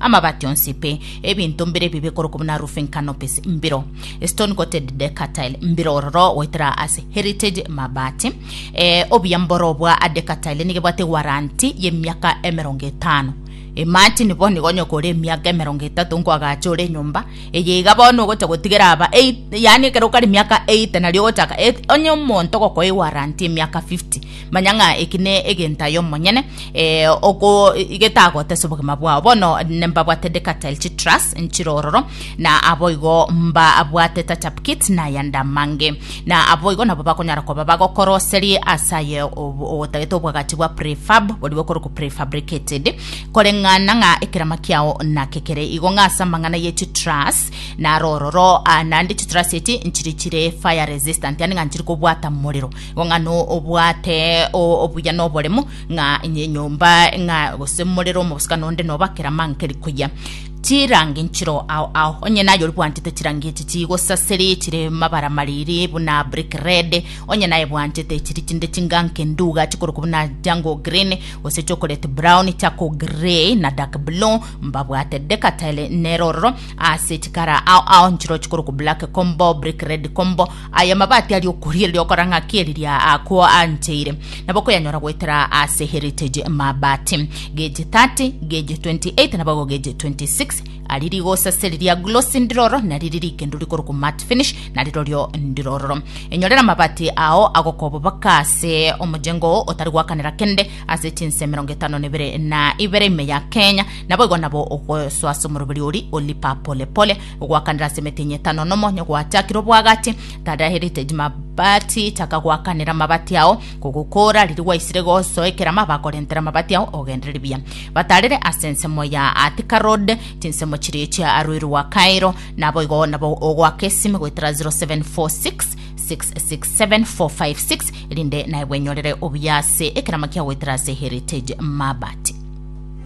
Amabati onsi, pe ebinto mbire ebibe korokwa buna roofing canopies mbiro, stone coated decker tile mbiro ororo goetera ase heritage mabati. Eh, obuya mboro bwa a decker tile nigo ebwate warranty y'emiaka emerongo etano. Imagine bono igo onye okore emiaka emerongo etato nkoagacha ore enyomba eye iga bono ogocha gotigera aba eight- yaani ekero okare emiaka 80 nario ogochaka et- onye omonto ogokoa ewarranty y'emiaka 50 Manya ng'a eki ne egento aye omonyene eh, oko- getagotesa obogima bwao. Bono nembabwate Decatel Chitras nchirororo, na aboigo mbabwate Tachap Kit na ayanda amange. Na aboigo nabo bakonyara koba bagokoroserie ase aye ob- ogotagete obwagachi bwa prefab, boria bokorokwa prefabricated, koreng'ana ng'a ekerama kiao nake kere igo ng'a ase amang'ana ye chitras narororo, ah, naende chitras echi nchiri chire fire resistant, yaani ng'a nchiri kobwata morero. Ng'a nobwate obuya noboremo, ng'a enyomba, ng'a gose morero omobosibwa nonde noba keramankeri koyia. Chirangi nchiroo ao ao, onye naye oribwanchete chirangi echi chigosasiri chire mabara mariri buna brick red, onye naye bwanchete chiri chinde chinganke nduga chikorokwa buna jungle green, gose chocolate brown, charcoal grey na dark blue, mbabwate decatile nero ororo. Ase chikara ao ao nchiroo chikorokwa black combo, brick red combo, Aya mabati ari okorigereria okora ng'a kieriria akwo ancheire, nabo koyanyora goetera ase Heritage Mabati. Gage 30, gage 28 na boigo gage 26 ari rigosa seri ria glossy ndiroro na riri rikendo rikorokwa matte finish na rirorio ndirororo. Enyorera amabati ao agoka obobaka ase omojengo oo otari gwakanera kende ase chinse emerongo etano na ibere na ibere ime ya Kenya, naboigo nabo ogosoa ase omoroberi oria o Lipa Pole Pole Ogwakanera ase emetenyi etano nomo nigo gwachakire obwagachi. Tara heritage mabati, chaka gwakanera amabati ao, kogokoora riria gwaisire gosoe keramo abakorentera amabati ao ogenderere buya. Batarere ase ensemo ya Attica Road, chinsemo chiria chia Aruiru wa Cairo, naboigo nabo ogoaka esime goetera 0746 667 456 erinde naye bwenyorere obuya ase ekerama kia goetera ase heritage mabati.